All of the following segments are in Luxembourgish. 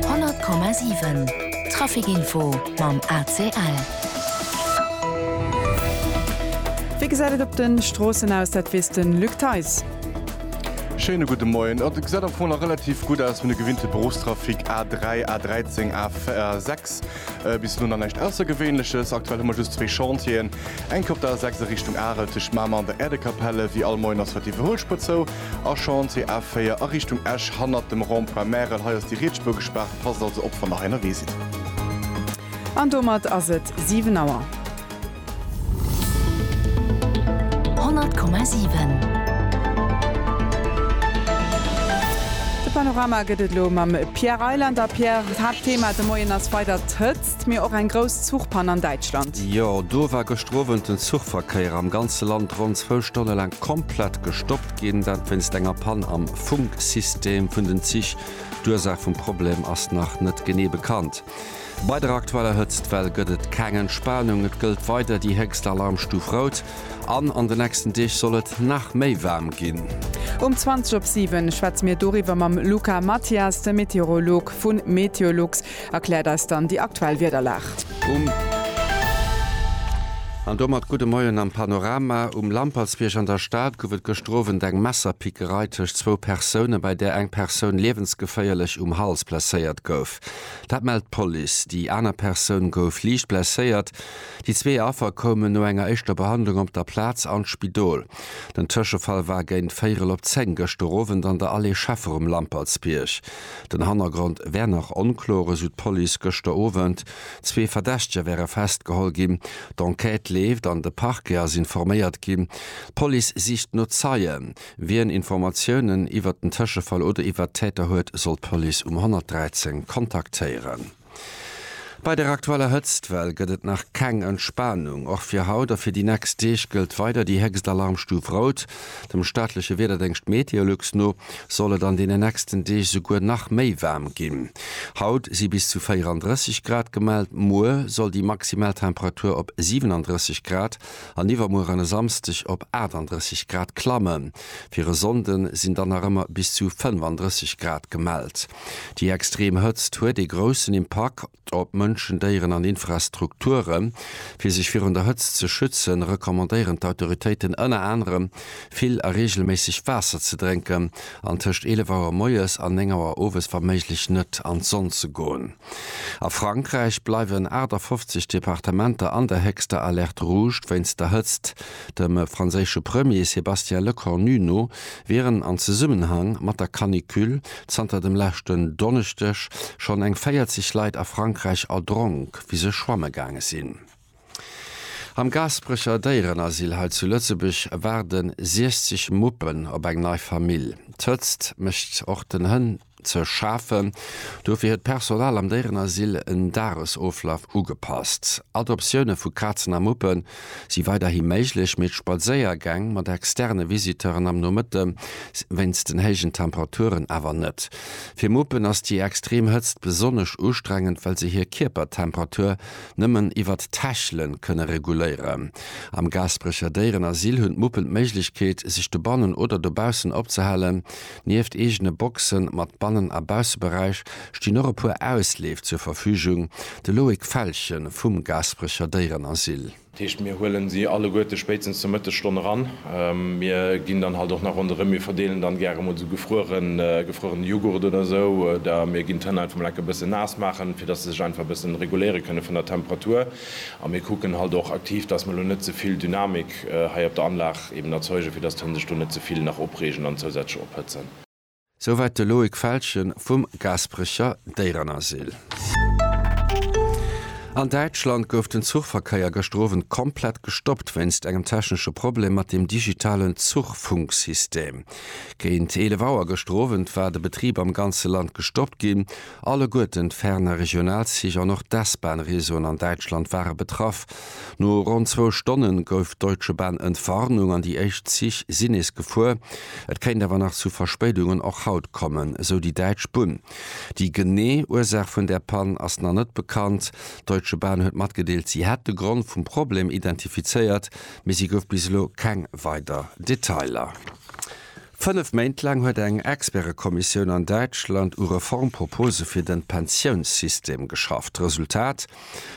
100,7 Traficinfo mam ACL. Wéi gesäit et op de Stroossen aus? Dat weess de Luc Theis. Schéine gudde Moien. Et gesäit am Fong nach relativ gutt aus, mir gewinnte Beruffstrafic A3, A13, A6 bis elo nach näischt Aussergewéinleches. Aktuell hu mer just zwee Chantieren, enke op der A6 a Richtung Arel tëscht Mamer an der Äerdekapell. Wéi all Moien ass haut déi Iwwerhuelspuer zou. A Chantier A4 a Richtung Esch hannert dem Rond-point Märel. Hei ass déi riets Spuer gespaart, passt also op wann nach ennerwee sidd. An domat ass et 7 Auer. 100,7. De Panorama gëtt et elo mam Pierre Reyland. A Pierre, d'Haaptthema de Moien ass weider d'Hëtzt. Mir och eng grouss Zuchpann an Däitschland. Jo, do war gëschter Owend den Zuchverkéier am ganze Land ronn zwou Stonne laang komplett gestoppt ginn. Dat wéinst enger Pann am Funksystem vun den Zich. D'Ursaach vum Problem ass nach net genee bekannt. Bei der aktueller Hëtztwell gëtt et keng Entspanung. Et gëllt weider déi héchst Alarmstuf Rout an an den nächsten Deeg soll et nach méi waarm ginn. Um 20 op 7 schwätze mir doriwwer mam Luca Mathias, de Meteorolog vu Meteolux. Erkläert eis dann déi aktuell Wiederlag. An domat gudde Moien am Panorama. Um Lampertsbierg an der Stad gouf et gëschter Owend eng Messerpickerei tëscht zwou Persounen, bei där eng Persoun liewensgeféierlech um Hals blesséiert gouf. Dat mellt d'Police. Déi aner Persoun gouf liicht blesséiert. Déi zwee Affer koumen no enger éischter Behandlung op der Plaz an d'Spidol. Den Tëschefall war géint véierel op zéng gëschter Owend an der Allée Scheffer um Lampertsbierg. Den Hannergrond wär nach onkloer, esou d'Police gëschter Owend. Zwee Verdächteger wäre festgeholl ginn. D'Enquête leeft an de Parquet ass informéiert ginn. D'Police sicht no Zeien. Wien Informatiounen iwwert den Tëschefall oder iwwert d'Täter huet, soll d'Police um 113 kontaktéieren. Bei der aktueller Hëtztwell gëtt et nach keng Entspanung. Och fir haut a fir déi nächst Deeg gëllt weider déi héchst Alarmstuf Rout. Dem staatleche Wiederdéngscht Meteolux no soll et an deenen nächsten Deeg esouguer nach méi waarm ginn. Haut si bis zu 34 Grad gemellt, muer soll déi maximal Temperatur op 37 Grad an iwwermuer an e Samsdeg op 38 Grad klammen. Fir e Sonnde sinn dann nach ëmmer bis zu 35 Grad gemellt. Déi extrem Hëtzt huet ee groussen Impakt op Mënschen, Déieren an Infrastrukturen. Fir sech virun der Hëtzt ze schützen, recommandéieren d'Autoritéiten ënner anerem, vill a reegelméisseg Waasser ze drénken an tëscht 11 Auer moies an 9 Auer owes wa méiglech net an d'Sonn ze goen. A Frankräich bleiwen 58 Departementer an der héchster Alerte rouge wéinst der Hëtzt. Dem franséische Premier Sébastien Lecornu no wieren an Zesummenhang mat der Canicule Zanter dem leschten Donneschdeg schonn eng 40 Leit a Frankräich erdronk, wéi se schwamme gaange sinn. Am Gaasperecher Déierenasyl hei zu Lëtzebuerg waarde 60 Muppen op eng nei Famill. D'Hëtzt mécht och den Hënn ze schafen, dofir huet d'Personal am Déierenasyl en Dagesoflaf ugepasst. Adoptioune vu Kazen a Muppen si weiderhi méiglech, mee d'Spadséiergäng mat externe Visiteuren am Nomëtte wéinst den héijen Temperaturen awer net. Fir Muppen ass déi extrem Hëtzt besonnesch ustrengend, well se hir Kierpertemperatur nëmmen iwwer d'Täschele kënne reguléieren. Am Gaasperecher Déierenasyl hunn d'Muppen d'Méiglechkeet, sech dobannen oder dobaussen opzehalen. Nieft eegene Boxe mat Bannen a Bausseberäich stinn och e puer Ausleef zur Verfügung, de Loïc Felgen vum Gaasperecher Déierenasyl. Dat heescht, mir huelen si alleguerte spéitstens zur Mëttesstonn eran. Mir ginn dann halt och nach ronderëm, mir verdeelen dann gäre mol esou gefrueren, gefruerene Jughurt oder esou, oder mir ginn d'Hënn einfach mol enke bëssen naass maachen, fir dass se sech einfach e bëssen reguléiere kënne vun der Temperatur. A mir kucken halt och aktiv, dass mer elo net ze vill Dynamik hei op der Anlag eben erzeugen, fir dass d'Hënn sech do net ze vill nach opreegen an zousätzlech ophëtzen. Souwäit de Loïc Felschen vum Gaasperecher Déierenasyl. An Däitschland gouf den Zuchverkéier gëschter Owend komplett gestoppt wéinst engem technesche Problem mat dem digitalen Zuchfunksystem. Géint 11 Auer gëschter Owend war de Betrib am ganze Land gestoppt ginn. Alleguerten d'Fernregionalzich an och d'S-Bahn-Réseauen an Däitschland ware betraff. No ronn zwou Stonne gouf d'Deutsche Bahn Entwarnung an déi éischt Zich sinn nees gefuer. Et kéint awer nach zu Verspéidungen och haut kommen, esou déi däitsch Bunn. Déi genee Ursaach vun där Pann ass nach net bekannt. D'Deutsche Bahn huet matgedeelt, si hätt de Grond vum Problem identifizéiert, mee si gouf bis elo keng weider Detailer. Fënnef Méint laang huet eng Expertekommissioun an Däitschland u Reformpropose fir den Pensiounssystem geschafft. Resultat,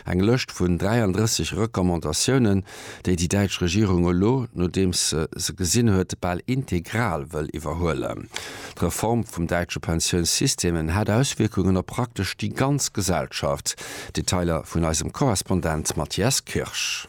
eng Lëscht vun 33 Recommandatiounen, déi déi däitsch Regierung elo, nodeems se se gesinn huet, bal integral wëll iwwerhuelen. D'Reform vum däitsche Pensiounssystem hätt Auswierkungen op praktesch déi ganz Gesellschaft. Detailer vun eisem Korrespondent Mathias Kirsch.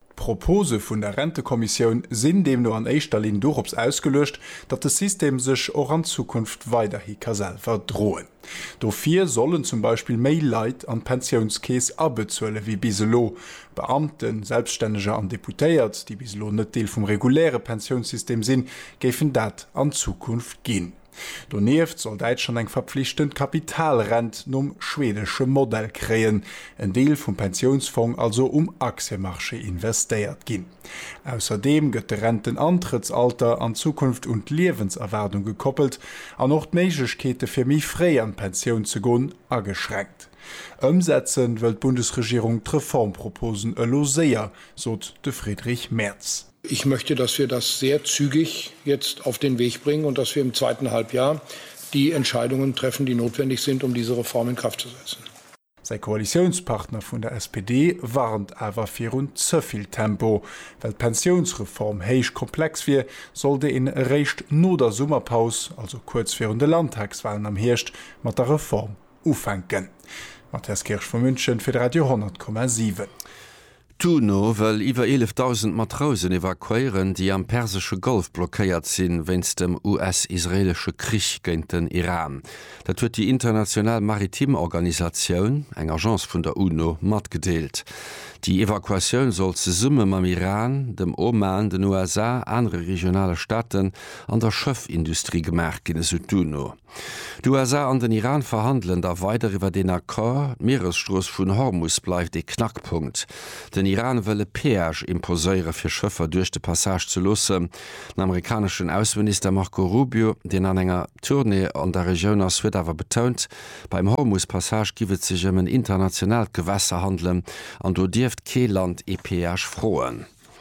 D'Propose vun der Rentekommissioun sinn deemno an éischter Linn dorops ausgeluecht, datt de System sech och an Zukunft weiderhi ka selwer droen. Dofir sollen zum Beispill méi Leit an d'Pensiounskeess abezuele wéi bis elo, Beamten, Selbststänneger an Deputéiert, déi bis elo net Deel vum reguläre Pensiounssystem sinn, géifen dat an Zukunft ginn. Donieft soll Däitschland eng verpflichtend Kapitalrent nom schwedesche Modell kréien, en Deel vum Pensiounsfong also um Aktiemarché investéiert ginn. Ausserdeem gëtt de Rentenantrëttsalter an Zukunft un d'Liewenserwaardung gekoppelt an och d'Méiglechkeete fir méi fréi an d'Pensioun ze gon ageschränkt. Ëmsetzen wëll d'Bundesregierung d'Reformproposen elo séier, sot de Friedrich Merz. Ich möchte, dass wir das sehr zügig jetzt auf den Weg bringen und dass wir im zweiten Halbjahr die Entscheidungen treffen, die notwendig sind, um diese Reform in Kraft zu setzen. Säi Koalitiounspartner vun der SPD warnt awer virun ze vill Tempo. Well d'Pensiounsreform héich komplex wier, sollt een eréischt no der Summerpaus, also kuerz virun de Landtagswalen am Hierscht, mat der Reform ufänken. Mathias Kirsch vu München fir de Radio 10,7. D'UNO wëll iwwer 11.000 Matrousen evakuéieren, déi am persesche Golf blockéiert sinn, wéinst dem US-israeelesche Krich géint den Iran. Dat huet déi international maritim Organisatioun, eng Agence vun der UNO, matgedeelt. Déi Evakuatioun soll zesumme mam Iran, dem Oman, den USA, anere regionale Staaten an der Schëffindustrie gemaach ginn, esou d'UNO. D'USA an den Iran verhandelen da weider iwwer een Accord. D'Mieresstrooss vun Hormus bleift ee Knackpunkt. Den Iran wëll e Peage imposéiere fir Schëffer duerch de Passage ze loossen. Den amerikaneschen Ausseminister Marco Rubio, deen an enger Tournée an der Regioun ass, huet awer betount, beim Hormus-Passage giff et sech ëm en internationaalt Gewässer handelen an do dierft kee Land ee Peage froen.